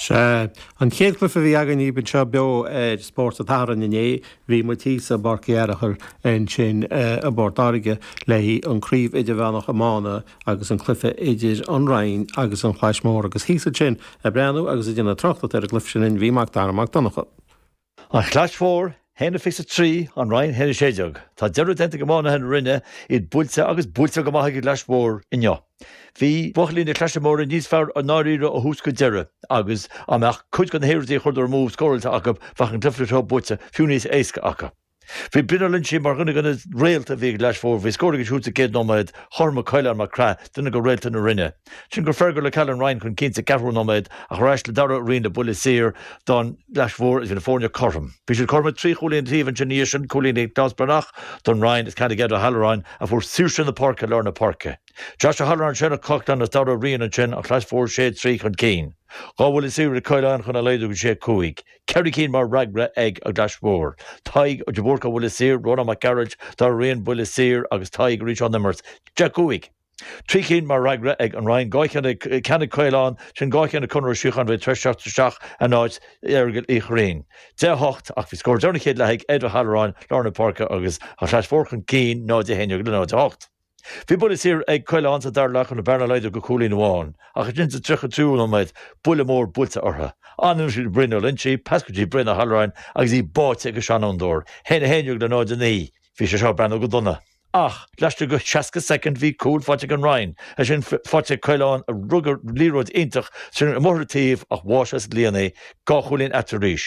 Sea. An chéad cluiche a bhí againn daoibh anseo beo ar Spórt an tSathairn inné, bhí muid thíos i bPáirc Uí Fhearchair ansin i bPort Láirge le haghaidh an Chraobh Idirmheánach Iomána agus an cluiche idir An Rinn agus An Chlais Mhór agus thíos ansin ag breathnú agus ag déanamh tráchtaireacht ar an gcluiche sin bhí Macdara Mac Donncha. An Chlais Mhór, a haon fiche a trí, An Rinn, a haon 16. Tá deireadh déanta ag iománaithe na Rinne iad buailte agus buailte go maith ag an gClais Mhór inniu. Bhí buachaillí na Claise Móire níos fearr i ndáiríre ó thús go deireadh agus dá mbeadh cuid de na hiarrachtaí a chuireadar amú scóráilte acu bheadh an cluiche seo buaite fiú níos éasca acu. Bhí Brian Ó Loingsigh mar dhuine de na réalta a bhí ag an gClais Mhór. Bhí scór aige siúd sa chéad nóiméad, chothromaigh Coileán Mac Craith, duine de réalta na Rinne. Ansin chuir Fergal Ó Ceallaigh an Rinn chun cinn sa cheathrú nóiméad ach ar ais le Darragh Ó Riain le buille saor don Chlais Mhór is bhí na foirne cothrom. Bhí siad cothrom ag trí chúilín taobh ansin ina dhiaidh sin, cúilín Nioclás Breathnach don Rinn is ceann ag Ed Ó hAlluráin a fuair saoirse na páirce i lár na páirce. Josh O'Halloran ansin Coughlan is Darragh Ó Riain ansin an Chlais Mhór sé a trí chun cinn. Dhá bhuille saor ag Coileán chun a laghdú go sé a cúig. Ceithre cinn mar fhreagra ag an gClais Mhór. Tadhg de Búrca Buille Saor, Rónán Mac Gearailt Darragh Ó Riain buille saor agus Tadhg arís ón imirt. Deich a cúig. Trí cinn mar fhreagra ag an Roinn. Dhá cheann a ceann ag Coileán, ansin dhá cheann ag Conor Ó Síocháin a bhí tar éis teacht isteach in áit Fheargail Uí Chuirrín. Deich a hocht. Ach bhí scór deireanach chéad leath ag Ed Ó hAlluráin, lár na páirce agus An Chlais Mhór chun cinn 0-11 le 0-8. Bhí buille saor ag Coileán sa dara leath chun an bhearna a laghdú go cúilín amháin ach ansin sa 33ú nóiméad, buille mór buailte orthu. Anonn siad Brian Ó Loingsigh, pas go dtí Brian Ó hAlluráin agus í báite ag an seanfhondúir. A haon 11 le 0, 9. Bhí sé seo ag breathnú go dona. Ach, laistigh de 60 soicind bhí cúl faighte ag an Roinn, é sin faighte ag Coileán a rug liathróid iontach trina bhóithre taobh ach bháigh sa líon í dhá chúilín eatarthu arís.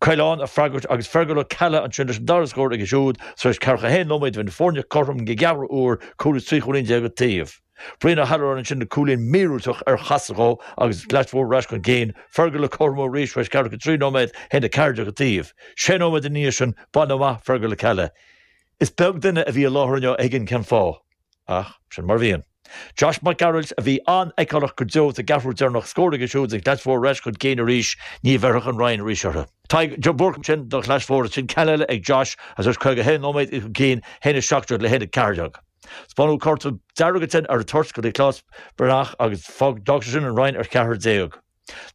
Coileán ag freagairt agus Fergal Ó Ceallaigh ansin leis an dara scór aige siúd tar éis 41 nóiméad. Bhí na foirne cothrom don gceathrú uair, cúl is trí chúilín déag an taobh. Brian Ó hAlluráin ansin le cúilín míorúilteach ar chasadh dhó agus an Chlais Mhór ar ais chun cinn, Fergal le cothrom arís tar éis ceathracha trí nóiméad, a haon 14 an taobh. Sé nóiméad ina dhiaidh sin, baineadh amach Fergal Ó Ceallaigh. Is beag duine a bhí i láthair inniu a thuigeann cén fáth. Ach sin mar a bhíonn. Josh Mac Gearailt a bhí an-fheiceálach go deo sa gceathrú deireanach scór aige siúd is an Chlais Mhór ar ais chun cinn arís, ní bhéarfadh an Rinn arís orthu. Tadhg de Búrca ansin don Chlais Mhór is sin ceann eile ag Josh agus anois 51 nóiméad iad chun cinn, 1 17 le 1 14. Spáineadh cárta dearg ansin ar an toirt do Nioclás Breathnach agus d'fhág sé sin an Rinn ar cheathrar déag.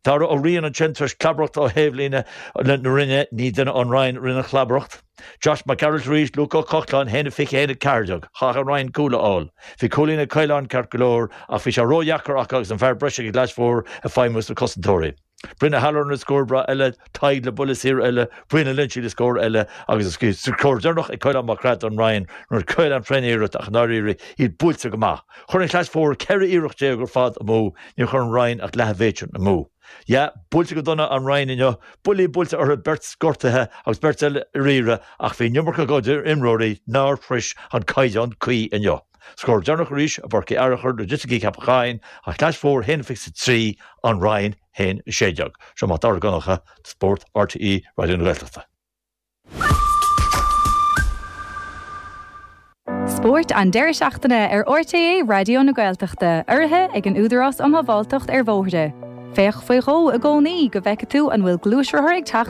Darragh Ó Riain ansin tar éis clabaireacht ó thaobhlíne na Rinne ní duine ón Rinn a rinne an chlabaireacht. Josh Mac Gearailt arís, Luke Ó Cochláin a haon a 20 a haon a ceathair déag. Chaith an Rinn cúl a fháil. Bhí cúilín ag Coileán ceart go leor ach bhí sé ró dheacair acu agus an fear breise ag an gClais Mhór ag feidhmiú sna cosantóirí. Brian Ó hAlluráin le scór breá eile. Tadhg le buille saor eile, Brian Ó Loingsigh le scór eile agus an scór deireanach ag Caolán Mac Craith don Rinn nuair a scaoil an Freney iarracht ach i ndáiríre iad buailte go maith. Chuir an Chlais Mhór 14 iarracht ar fad amú, níor chuir an Rinn ach leath an mhéid sin amú. Yeah, buailte go dona an Rinn inniu, buillí buailte orthu, beirt gortaithe agus beirt eile ar iarraidh ach bhí an iomarca dá gcuid imreoirí nár shrois an caighdeán cuí inniu. Scór deireanach arís i bPáirc Uí Fhearachair nuair a d'eitigh Ceapach Choinn, an Chlais Mhór 1 23, An Rinn 1 16, Seo Mac Dara Mac Donncha, Spórt, RTÉ Raidió na Gaeltachta. Spórt an deireadh seachtaine ar RTÉ Raidió na Gaeltachta, urraithe ag an Údarás um Shábháilteacht ar Bhóithre. Féach faoi dhó i gcónaí go bhfeicfidh tú an bhfuil gluaisrothar ag teacht